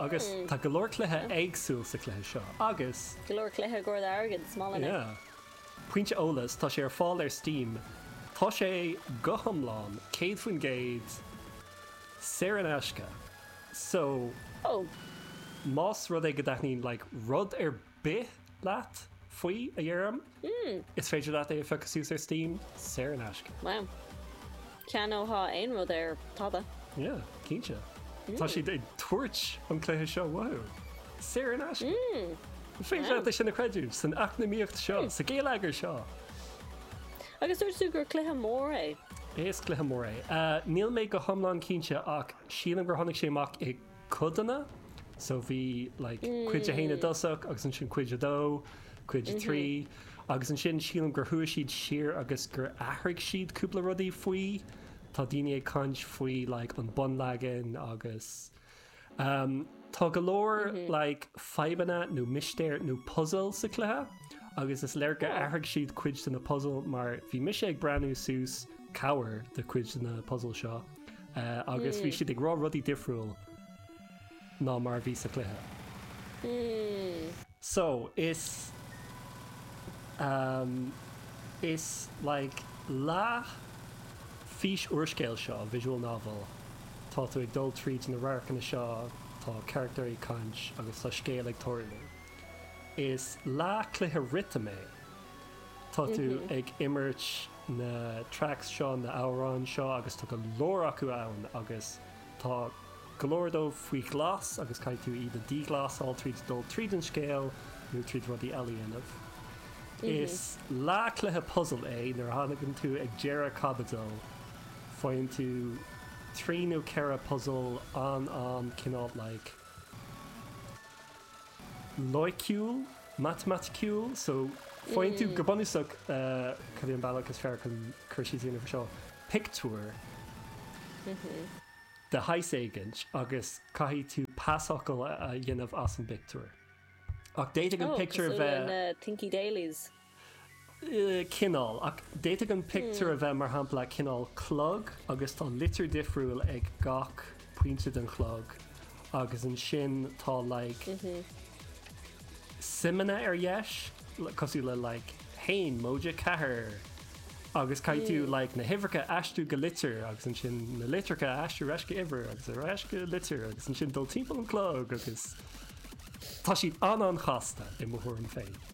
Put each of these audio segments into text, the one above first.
Agus tá go leor cluichí éagsúil sa cluiche seo agus. Pointe eolas, tá sé ar fáil ar Steam. Tá sé go hiomlán, 100%, saor in aisce. So, más rud é go dtaitníonn like rud ar bith leat faoi, a Dhiarmuid. Is féidir leat é a phiocadh suas ar Steam saor in aisce. Wow. Geall le tá aon rud ar tada. Yeah, cinnte. Tá siad ag tabhairt an cluiche seo uathu saor in aisce. An féidir leat é sin a chreideamh san eacnamaíocht seo, sa ghéilleagar seo. Agus dúirt tú gur cluiche mór é. Is cluiche mór é. Níl mé go hiomlán cinnte ach sílim gur tháinig sé amach i. codanna so bhí like cuid a haon i dtosach agus ansin cuid a dó, cuid a trí agus ansin sílim gur chuaigh siad siar agus gur athraigh siad cúpla rudaí faoi, tá daoine ag caint faoi like an bunleagan agus ehm tá go leor like fadhbanna nó mistéir nó puzail sa chluiche agus is léir gur athraigh siad cuid de na puzail mar bhí mise ag breathnú suas cabhair do cuid de na puzail seo. agus bhí siad ag rá rudaí difriúil ná mar a bhí sa chluiche. So, is like leath fís-úrscéal seo, visual novel, tá tú ag dul tríd na radharcanna seo, tá carachtair ag caint agus tá scéal ag tarlú. Is leath cluiche rithim é Tá tú ag imirt na tracks seo, na hamhráin seo agus tá go leor acu ann agus tá go leor díobh faoi ghlas agus caithfidh tú iad a dhíghlasáil tríd dul tríd an scéal nó tríd rudaí eile a dhéanamh. Is leath cluiche puzail é, nuair a thagann tú ag deireadh caibidil, faigheann tú trí nó ceithre puzail an-an cineál like, loighciúil, matamaiticiúil so faigheann tú, go bunúsach, cad é an bealach is fearr chun cur síos a dhéanamh air seo? pictiúr de shaghas éigin agus caithfidh tú pasfhocal a dhéanamh as an bpictiúr. Ach d'fhéadfadh an pictiúr a bheith. cineál ach d'fhéadfadh an pictiúr a bheith mar shampla cineál clog agus tá litir difriúil ag gach pointe den chlog agus ansin tá like suimeanna ar dheis cosúil le like 1 móide 4 agus caithfidh tú like na huimhreacha a aistriú go litir agus ansin na litreacha a aistriú ar ais go uimhir agus ar ais go litir agus ansin dul timpeall an chlog agus tá siad an-an-chasta i mo thuairim féin.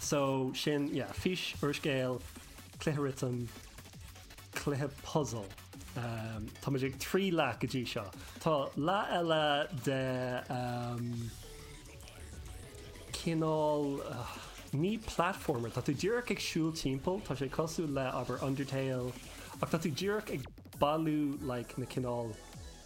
So sin ea fís, úrscéal, cluiche rithim, cluiche puzzle. Táimid ag trí leath go dtí seo. Tá leath eile de cineál ní platformer, tá tú díreach ag siúl timpeall, tá sé cosúil le abair Undertale ach tá tú díreach ag bailiú like na cineál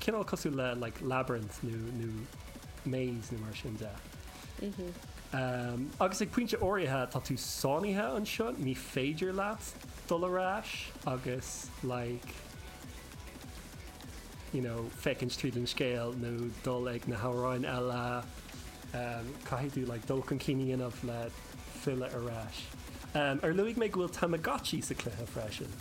Cineál cosúil le like labyrinth nó nó maze nó mar sin de. Agus ag pointe áirithe tá tú sáinnithe anseo, ní féidir leat dul ar ais agus like you know féachaint tríd an scéal nó dul ag na hamhráin eile. Caithfidh tú like dul chun cinn a dhéanamh le filleadh ar ais. Ar luaigh mé go bhfuil Tamagotchi sa chluiche freisin?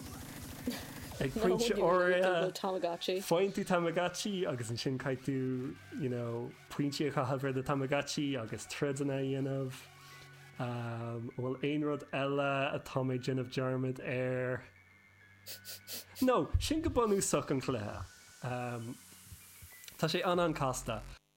Ag pointe áirithe, faigheann tú Tamagotchi agus ansin caithfidh tú, you know, pointí a chaitheamh ar do Tamagotchi agus troideanna a dhéanamh. An bhfuil aon rud eile atá mé ag déanamh dearmad air? No, sin go bunúsach an chluiche. Tá sé an-an casta.